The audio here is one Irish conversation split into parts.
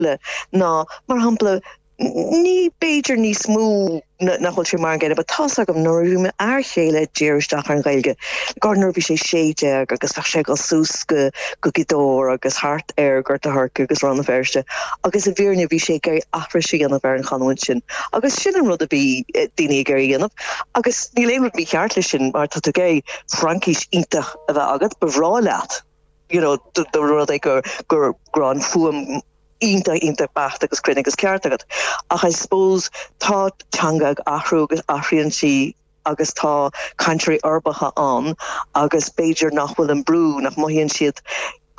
simple ná mar shampla ní b'fhéidir níos mó na nach bhfuil sé mar an gcéanna but tá's agam nuair a bhí m'fhear céile ag díriú isteach ar an Ghaeilge gur nuair a bhí sé 16 agus bheadh sé ag dul suas go go Gaoth Dobhair agus thart ar Ghort a' Choirce agus Rann na Feirste agus i bhfírinne bhí sé ag iarraidh aithris a dhéanamh ar an chanúint sin agus sin an rud a bhí daoine ag iarraidh a dhéanamh agus níl aon rud mícheart leis sin má tá tú ag iarraidh Fraincis iontach a bheith agat ba bhreá leat you know, dá mba rud é gur gur gur an fuaim iontach iontach beacht agus cruinn agus ceart agat ach I suppose tá teanga ag athrú agus athraíonn sí agus tá cainteoirí uirbeacha ann agus b'fhéidir nach bhfuil an brú nach mothaíonn siad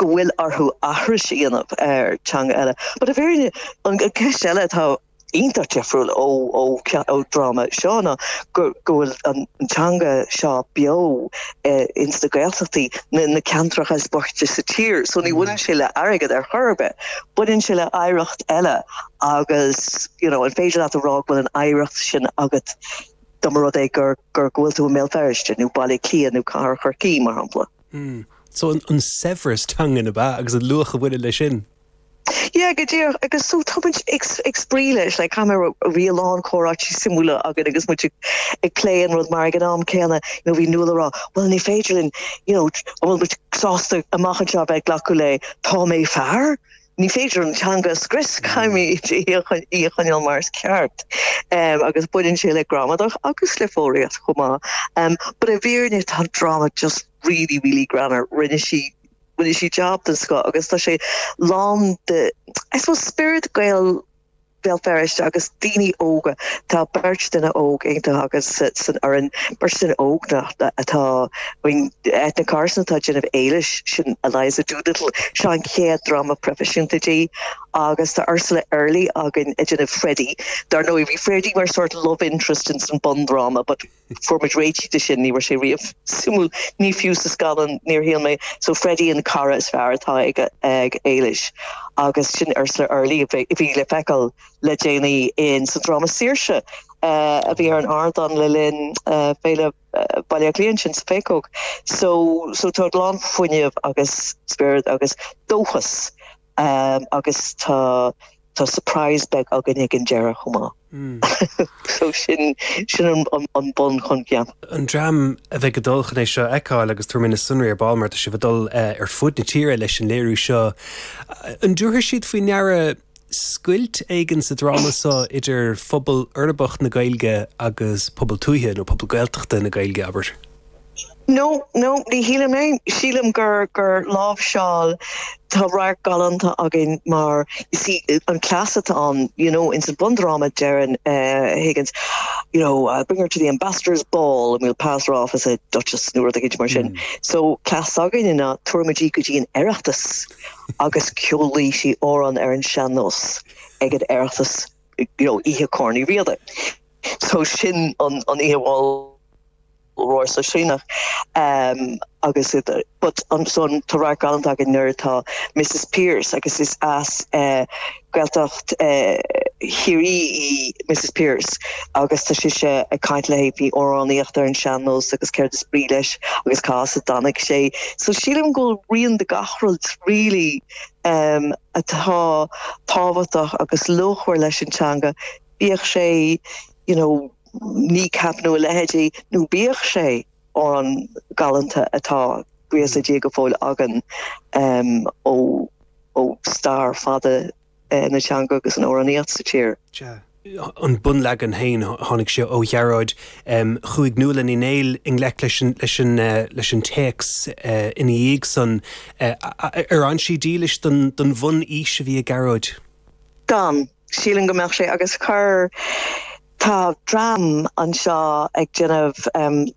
go bhfuil orthu aithris a dhéanamh ar teanga eile but a very an ceist eile atá iontach difriúil ón dráma seo ná go bhfuil an teanga seo beo ins na Gaeltachtaí na ceantracha is boichte sa tír, so ní bhaineann sé le airgead ar chor ar bith, baineann sé le hoidhreacht eile agus you know an féidir leat a rá go bhfuil an oidhreacht sin agat dá mba rud é gur gur go bhfuil tú i mBéal Feirste nó Baile Átha Cliath nó Cathair Chorcaí mar shampla. So an saibhreas teanga ab ea agus an luach a bhaineann leis sin? Yeah, go díreach, agus so tá muid ag ag spraoi leis, like tá muid i ndiaidh a lán comhráití suimiúla againn agus muid ag ag plé an rud mar ag an am céanna, you know, bhí Nuala ag rá, bhuel ní féidir linn, you know, an bhfuil muid sásta amach anseo a bheith ag glacadh le tá mé fear? Ní féidir an teanga a scrios, caithfimid í a choin- í a choinneáil mar is ceart. Em, agus baineann sé le gramadach agus le foghraíocht chomh maith. Em, but i bhfírinne tá an dráma just really, really greannmhar, rinne sí sí jab den scoth agus tá sé lán de I suppose spiorad Gael Bhéal Feirste agus daoine óga tá beirt duine óg iontach againn san fhoireann beirt duine óg iontach atá I mean Eithne Carson atá ag déanamh Éilis sin Eliza Doolittle, seo an chéad dráma proifisiúnta di agus tá Ursula Earley againn ag déanamh Freddie dar ndóigh bhí Freddie mar sort love interest ins an bundráma but Fuair muid réitithe de sin, ní raibh sé riamh suimiúil, ní fiú sa scannán, níor shíl mé. So Freddie an cara is fearr atá ag Éilis agus sin Ursula Early a bhí le feiceáil le déanaí in sa dráma Saoirse! a bhí ar an ardán le linn féile Baile Átha Cliath ansin sa Phéacóg. So tá a lán fuinneamh agus spiorad agus dóchas agus tá tá surprise beag againn ag an deireadh chomh maith. so sin sin an an bunoscionn. An dream a bheidh ag dul chun é seo a fheiceáil agus tabharfaidh mé na sonraí ar ball mar tá sibh ag dul ar fud na tíre leis an léiriú seo. An dtabharfaidh siad faoi ndeara scoilt éigin sa dráma seo idir phobal uirbeach na Gaeilge agus pobal tuaithe nó pobal Gaeltachta na Gaeilge, abair? No, no, ní shílim é. Sílim gur gur láimhseáil, tá radharc galánta againn mar, you see, an cleas atá ann, you know, ins an bundráma deireann Higgins, you know, I'll bring her to the ambassador's ball and we'll pass her off as a duchess nó rud éigint mar sin. So cleas s'againne ná tabharfaimid í go dtí an oireachtas agus ceolfaidh sí amhrán ar an sean-nós ag an oireachtas, you know, oíche Corn Uí Riada. So sin an an oíche a bhfuil, róshóisialach agus but ansin tá radharc galánta againn nuair atá Missus Pearse agus is as Gaeltacht Chiarraí í Missus Pearse agus tá sise ag caint léi faoi amhránaíocht ar an sean-nós agus céard is brí leis agus cá as a dtáinig sé. So sílim go bhfuil rian de gach rud really atá tábhachtach agus luachmhar leis an teanga bíodh sé you know, kneecap nó a leithéidí, nó bíodh sé an ceol galánta atá buíochas le Dia go fóill againn ó stair fada na teanga agus an amhránaíocht sa tír. Sea, an bunleagan féin, tháinig sé ó Ghearóid. Chuaigh Nuala Ní Néill i ngleic leis leis an leis an téacs ina dhiaidh san. Ar fhan sí dílis don bhun-fhís a bhí ag Gearóid? D'fhan. Sílim go mbeadh sé, agus chuir. Tá dream anseo ag déanamh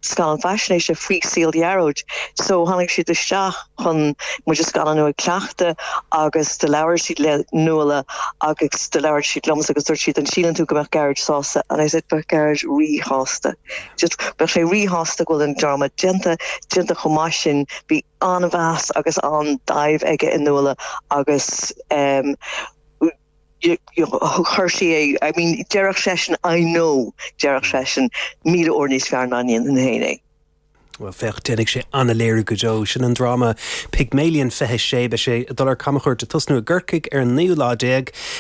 scannán faisnéise faoi saol Ghearóid so tháinig siad isteach chun muid a scannánú ag cleachtadh agus do labhair siad le Nuala agus do labhair siad liomsa agus dúirt siad an síleann tú go mbeadh Gearóid sásta and I said bheadh Gearóid rí-shásta bheadh sé rí-shásta go bhfuil an dráma déanta, déanta chomh maith sin, bhí an-mheas agus an-dáimh aige i Nuala agus eh. chuir sí é, I mean, déarfadh seisean I know, déarfadh seisean míle uair níos fearr ná mar a dhéanfainn féin é. Well féach déanfaidh sé ana-léiriú go deo sin an dráma Pygmalion 26 beidh sé ag dul ar camchuairt ag tosnú i gCorcaigh ar an 9ú lá déag